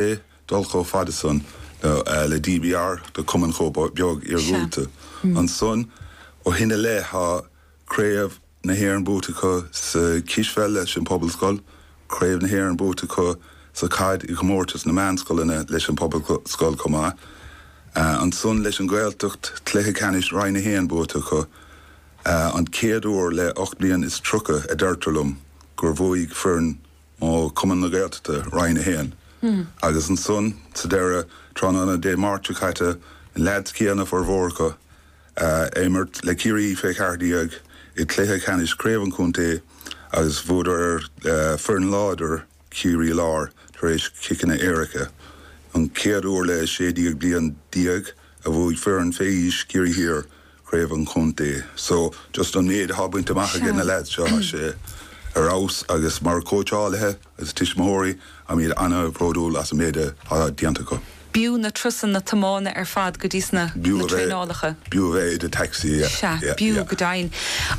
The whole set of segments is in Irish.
i. dul chomh fada san le DBR do cumann chomh beag iargúlta. Ansan ó shin i leith tá Craobh na hÉireann buaite acu sa chispheil leis an Phobalscoil, Craobh na hÉireann buaite acu sa chaid i gcomórtas na meánscoileanna leis an Phobalscoil chomh maith. Ansan leis an nGaeltacht, cluiche ceannais Roinn a hAon buaite acu, an chéad uair le ocht mbliana is tríocha a deirtear liom gur bhuaigh foireann ó Chumann na Gaeltachta, Roinn 1, agus ansan sa deireadh, tráthnóna Dé Máirt seo caite, na leaids céanna, formhór acu, ag imirt le Ciarraí Thiar fé cheathair déag i gcluiche ceannais Craobh an Chontae agus bhuadar ar foireann láidir Chiarraí Láir tar éis chiceanna éirice. An chéad uair le sé bliana déag a bhuaigh foireann fé aois Chiarraí Thiar. craobh an chontae. So, just an méid atá bainte amach aige na lads seo, tá sé ar fheabhas agus mar chóitseálaithe agus tuismitheoirí, táimid an-bhródúil as an méid atá déanta acu. B'fhiú na turasanna tiomána ar fad go dtíos na traenálacha. B'fhiú a bheith i do taxi, yeah. Sea, b'fhiú go deimhin.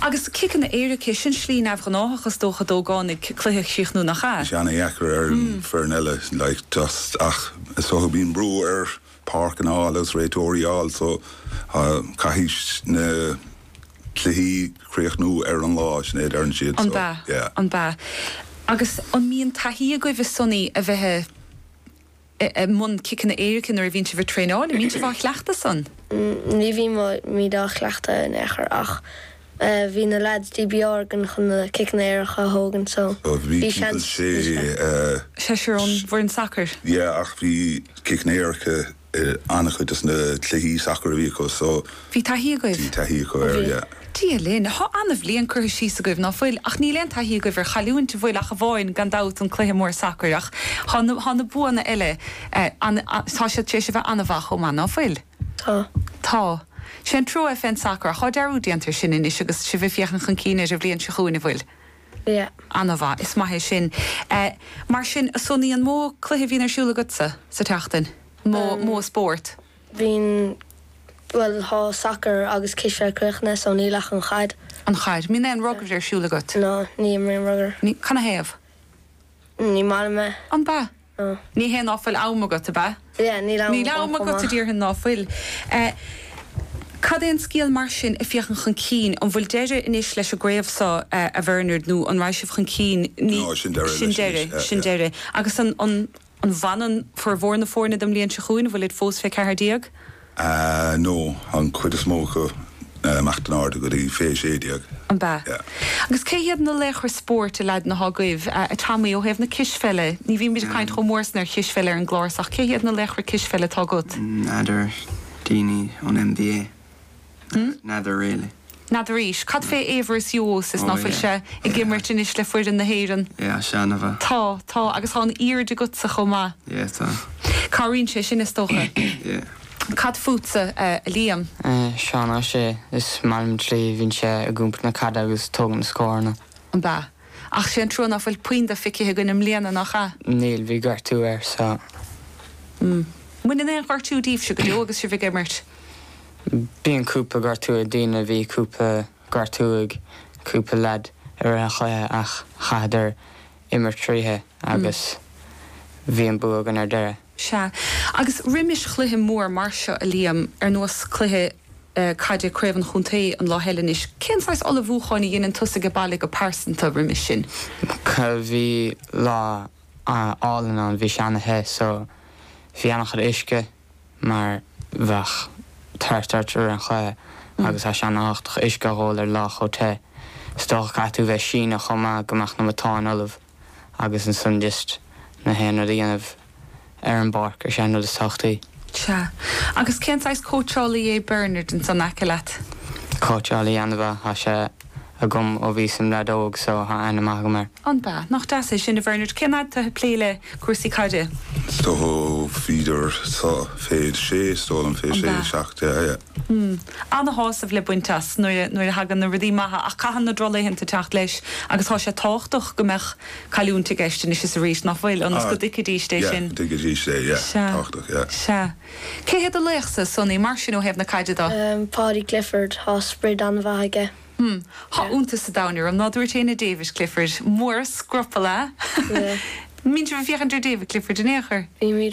Agus ciceanna éirice, sin slí neamh-ghnáthach is dócha d'ógánaigh cluiche a chríochnú, nach ea? Tá sé ana-dheacair ar an foireann eile, like, just, ach is dócha go mbíonn brú ar páirceanna a fháil agus réiteoirí a fháil so caithfidh na cluichí críochnú ar an lá sin é a deireann siad so yeah. An b'ea. Agus an mbíonn taithí agaibh a Sonny a bheith i mbun ciceanna éirice nuair a bhíonn sibh ag traenáil? An mbíonn sibh á chleachtadh san? Ní bhímid á chleachtadh in aon chor ach Bhí na leaids dí beárgain chun na ciceanna éirice a thógaint so bhí seans ag na sé. seisear ón bhfoireann sacair. Yeah ach bhí ciceanna éirice in an-chuid dos na cluichí sacair a bhí acu so Bhí taithí agaibh? bhí taithí acu air yeah. Dia linn. Tá an-bhliain curtha síos agaibh, ná fuil? Ach níl aon taithí agaibh ar chailliúint, bhfuil? Ach amháin, gan dabht, an cluiche mór sacair. Ach tá na, tá na buanna eile, tá siad tar éis a bheith an-mhaith chomh maith, ná fuil? Tá. Tá. Sé an trua fén sacar ach cá bhfios ná go ndéanfar sin anois agus sibh ag féachaint chun cinn ar an bhliain seo chugainn, an bhfuil? Yeah. An-mhaith. Is maith é sin. Mar sin, a Sonaí, an mó cluiche a bhíonn ar siúl agatsa sa tseachtain? Mó, mó spórt? Bhíonn, bhuel, tá sacar agus cispheil críochnaithe so níl ach an chaid. An chaid. Mbíonn aon rugair ar siúl agat? No, ní imrím rugair. Ní? Canathaobh? Ní maith liom é. An b'ea? Ná. Ní hé ná fuil am agat, ab ea? Yeah, níl am Níl am agat, déarfainn ná fuil. Cad é an scéal mar sin ag féachaint chun cinn? An bhfuil deireadh anois leis an gcraobh seo, a Bhernard, nó an raghaidh sibh chun cinn? Ní, No, sin deireadh anois. Sin deireadh, yeah. Agus an, an, an bhfanann formhór na foirne don mbliain seo chugainn? An bhfuilid fós fé cheathair déag? Ahh no, an chuid is mó acu, imeacht in airde go dtí fé a sé déag, An b'ea? yeah. Agus cé hiad na laochra spóirt a leaideanna atá agaibh, a Tommy, ó thaobh na cispheile, ní bhímid ag caint chomh mór san ar chispheil ar an gclár so ach cé hiad na laochra cispheile atá agat? N'fheadar, daoine ón NBA, n'fheadar really. N'fheadraís. Cad fé Aivaras Uosis ná fuil sé ag imirt anois le foireann na hÉireann? Yeah, sé ana-mhaith. Tá, tá, agus tá an airde agatsa chomh maith. Yeah, tá. Cabhraíonn sé sin, is dócha. Yeah. Cad fútsa, a Liam? Seán Ó Sé, is maith liom an tslí, bhíonn sé ag iompar na caide agus tógann na scóranna. An b'ea? Ach sé an trua ná fuil puinn dó feicithe againn i mbliana, nach ea? Níl, bhí gortú air, so. Mbaineann aon ghortú díbhse go deo agus sibh ag imirt? Bíonn cúpla gortú ag daoine, bhí cúpla gortú ag cúpla leaid i rith an chluiche ach chaitheadar imirt thríotha agus bhí an bua againn ar deireadh. Sea. Agus roimis chluiche mór mar seo, a Liam, ar nós cluiche caide Craobh an Chontae an lá eile anois, cén saghas ullmhúcháin a dheineann tusa age baile go pearsanta roimis sin? Bhí lá álainn ann, bhí sé ana-the so bhí ana-chuid uisce. mar bheadh tart ort roimh an chluiche agus tá sé an-thábhachtach uisce a dh'ól ar lá chomh te. Is dócha caithfidh tú bheith síneadh chomh maith go mbeadh na matáin ullamh agus ansan just do dhícheall a dhéanamh ar an bpáirc, is é an rud is tábhachtaí. Sea. Agus cén saghas cóitseálaí é Bernard ansan aice leat? Cóitseálaí an-mhaith, tá sé. agam ó bhíos im leaid óg so tá aithne mhaith agam air. An bea? Nach deas é sin, a Bhernard? Cén fhad tá tú ag plé le cúrsaí caide? Do bhíodar so fé a sé, is dóigh liom, fé a sé, seacht de aidhe. Mmm. Ana-shásamh le baint as nuair a, nuair a thagann na rudaí maithe ach caitheann na droch-laethanta teacht leis agus tá sé tábhachtach go mbeadh cailliúint i gceist anois is arís, nach bhfuil? Ionas go dtuigfidís é sin. Yeah, go dtuigfidís é, yeah, tábhachtach, yeah. Sea. Cé hé do laochsa, Sonny, mar sin, ó thaobh na caide do? Pádraig Clifford. Thá sprid an-mhaith aige. Hmm. Thá iontas an domhain orm ná dúirt éinne David Clifford. Mór an scrupall é. An mbíonn sibh ag féachaint ar David Clifford in aon chor? Bímid